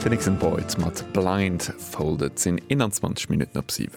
Den nächsten Boyd mat Blind Folded sinn 21 Minutten op 7.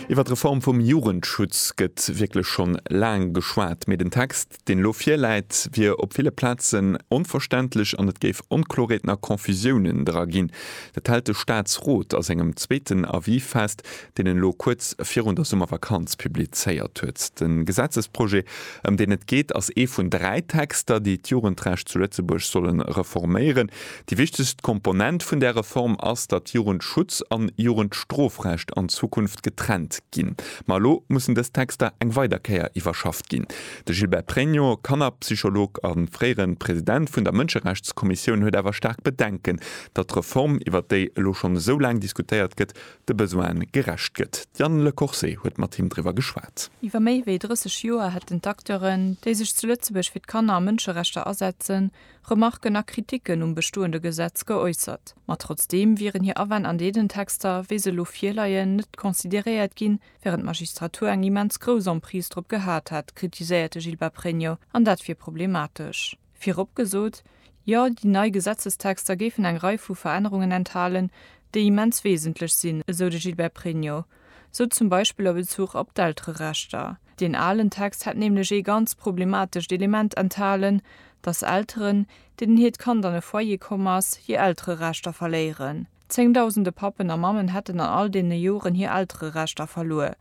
Iwwer d'Reform vum Jugendschutz gëtt wierklech schonn laang geschwat, mee den Text, deen elo virläit, wier op ville Plazen onverständlech an et géif Onkloreeten a Confusiounen dra ginn. Dat hält de Staatsrot a sengem zweeten Avis fest, deen en elo kuerz virun der Summervakanz publizéiert huet. De Gesetzesprojet, ëm deen et geet, ass ee vun dräi Texter, déi d'Jugendrecht zu Lëtzebuerg solle reforméieren. Déi wichtegst Komponent vun där Reform ass, datt Jugendschutz an Jugendstrofrecht an Zukunft getrennt ginn. Ma elo mussen dës Texter eng weider Kéier iwwerschafft ginn. De Gilbert Pregno, Kannerpsycholog a fréiere President vun der Mënscherechtskommissioun, huet awer staark Bedenken, datt d'Reform, iwwert déi elo schonn esou laang diskutéiert gëtt, de Besoine gerecht gëtt. D'Yann Le Corset huet mat him driwwer geschwat. Iwwer méi wéi 30 Joer hätten d'Acteuren, déi sech zu Lëtzebuerg fir d'Kanner a Mënscherechter asetzen, Remarken a Kriticken um bestoende Gesetz geäussert. Ma trotzdeem wieren hir Awänn an deenen Texter, wéi se elo virleien, net consideréiert ginn, wärend d'Magistratur eng immens grouss Emprise drop gehat hätt, kritiséiert de Gilbert Pregno, an dat wier problematesch. Virop gesot, Jo, déi nei Gesetzestexter géifen eng Rei vu Verännerungen enthalen, déi immens wesentlech sinn, esou de Gilbert Pregno. Sou zum Beispill a Bezuch op d'Eltererechter. Deen alen Text hätt nämlech ee ganz problematescht Element enthalen, datt Elteren, deenen hiert Kand an e Foyer komm ass, hir Eltererechter verléieren. Zéngdausende Pappen a Mammen hätten an all deene Joren hir Eltererechter verluer.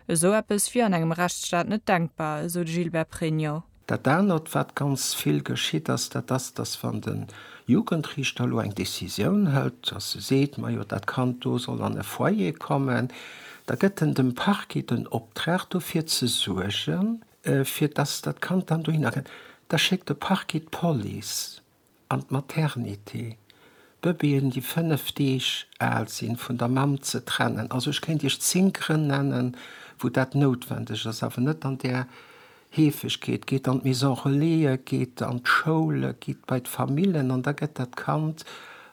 Esou eppes wier an engem Rechtsstaat net denkbar, esou de Gilbert Pregno. Dat anert, wat ganz vill geschitt ass, dat ass, datt wann de Jugendriichter elo eng Decisioun hëlt, datt e seet, majo dat Kand do soll an e Foyer kommen, da gëtt en dem Parquet den Optrag dofir ze suergen, fir datt dat Kand dann dohinner kënnt. Da schéckt de Parquet d'Police. an d'Maternité, d'Bëbeeën, déi 5 Deeg al sinn, vun der Mamm ze trennen. Also ech kéint Iech 10 Grënn nennen, wou dat noutwendeg ass, awer net an där Heefegkeet. Geet an d'Maison Relaisë, geet an d'Schoule, gitt bei d'Famillen an da gëtt dat Kand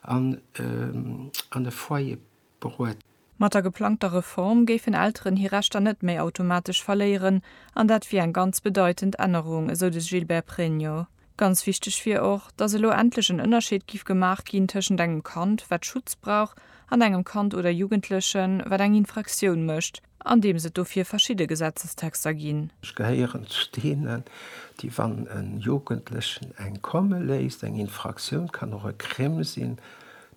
an e Foyer beruet. Mat der geplangter Reform géifen Elteren hir Rechter net méi automatesch verléieren an dat wier eng ganz bedeitend Ännerung, esou de Gilbert Pregno. Ganz wichteg wier och, datt elo endlech en Ënnerscheed giff gemaach ginn tëschent engem Kand, wat Schutz brauch, an engem Kand oder Jugendlechen, wat eng Infraktioun mécht. Andeems et dofir verschidde Gesetzestexter ginn. Ech gehéieren zu deenen, déi, wann e Jugendlechen eng komme léisst, eng Infraktioun kann och e Crime sinn,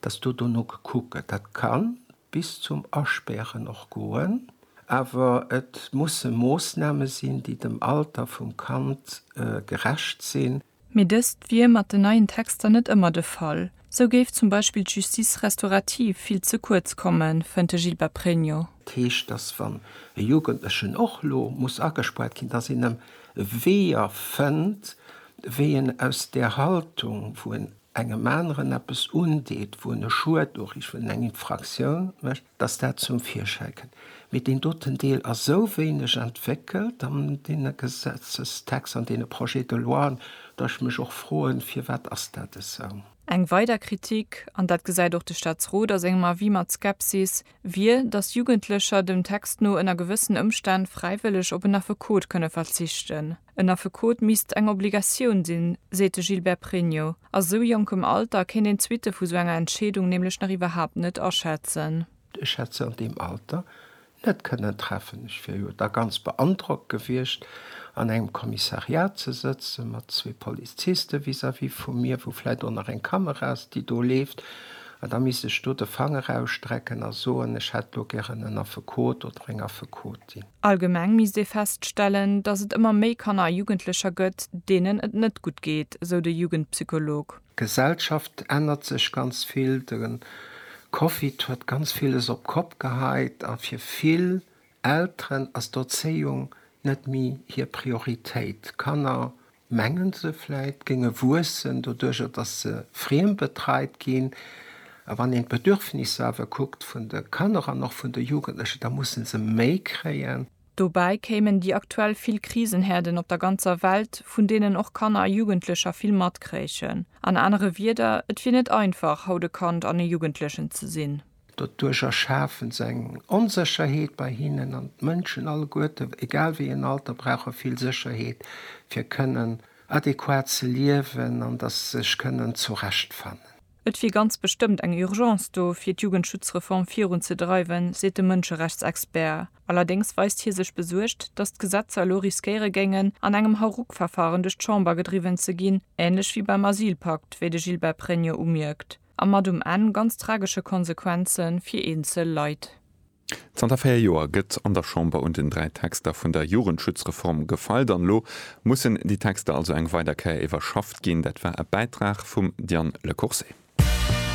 dass do dono gekuckt gëtt. Dat ka bis zum Aspären och goen. Awer et musse Moossname sinn, déi dem Alter vum Kand gerecht sinn. Mee dëst wier mat den neien Texter net ëmmer de Fall. Sou géif zum Beispill d'Justice restaurative vill ze kuerz kommen, fënnt de Gilbert Pregno. Et heescht, datt wann e Jugendlechen och lo muss agespuert ginn, datt een em Weeër fënnt, wéi en aus där Haltung, wou en engem aneren eppes undeet, wou en e Schued uriicht, wou en eng Infraktioun mécht, dass dat zum Virschäi kënn, mee deen doten Deel ass esou wéineg entwéckelt an deene Gesetzestext, an deene Projets de loien, datt ech mech och froen, Firwat ass dat esou? Eng weider Kritik, an dat gesäit och de Staatsrot a sengem Avis mat Skepsis, wier, dass Jugendlecher dem Text no ënner gewëssen Ëmstänn fräiwëlleg op en Affekot kënne verzichten. En Affekot misst eng Obligatioun sinn, seet de Gilbert Pregno. A sou jonkem Alter kéint een d'Suitte vu sou enger Entscheedung nämlech nach iwwerhaapt net aschätzen. Ech hätt se an deem Alter net kënnen treffen. Ech wier jo da ganz beandrockt gewiescht, an engem Kommissariat ze sëtzen, mat zwee Poliziste vis-à-vis vu mir, wou vläit och nach eng Kamera ass, déi do leeft, an da misst ech do de Fanger ausstrecken a soen, ech hätt do gären en Affekot oder eng Affekotin. Allgemeng misst ee feststellen, datt et ëmmer méi Kanner a Jugendlecher gëtt, deenen et net gutt geet, sou de Jugendpsycholog. D'Gesellschaft ännert sech ganz vill. De Covid huet ganz villes op d'Kopp geheit a fir vill Elteren ass d'Erzéiung net méi hir Prioritéit. D'Kanner mengen se vläit, géinge wuessen, doduerjer datt se friembetreit ginn. A wann een d'Bedürfnisser awer kuckt vun de Kanner an och vun de Jugendlechen, da musse se méi kréien. Dobäi kéimen déi aktuell vill Krisenherden op der ganzer Welt, vun deenen och Kanner a Jugendlecher vill matkréichen. An anere Wieder, et wier net einfach, haut e Kand an e Jugendlechen ze sinn. Doduerch erschafen se eng Onsécherheet bei hinnen an d'Mënschen alleguerte, egal wéi en Alter, brauche vill Sécherheet, fir kënnen adequat ze liewen an datt se sech kënnen zurechtfannen. Et wier ganz bestëmmt eng Urgence do, fir d'Jugendschutzreform virun ze dreiwen, seet de Mënscherechtsexpert. Allerdéngs weist hie sech besuergt, datt d'Gesetzer elo riskéiere géingen, an engem Hauruck-Verfaren duerch d'Chamber gedriwwen ze ginn, änlech wéi beim Asylpakt, wéi de Gilbert Pregno umierkt. A mat um Enn ganz tragesche Konsequenze fir eenzel Leit. Zanter véier Joer gëtt an der Chamber un den dräi Texter vun der Jugendschutzreform gefeilt an elo mussen déi Texter also eng weider Kéier iwwerschafft ginn. Dat war e Bäitrag vum Diane Le Courcé.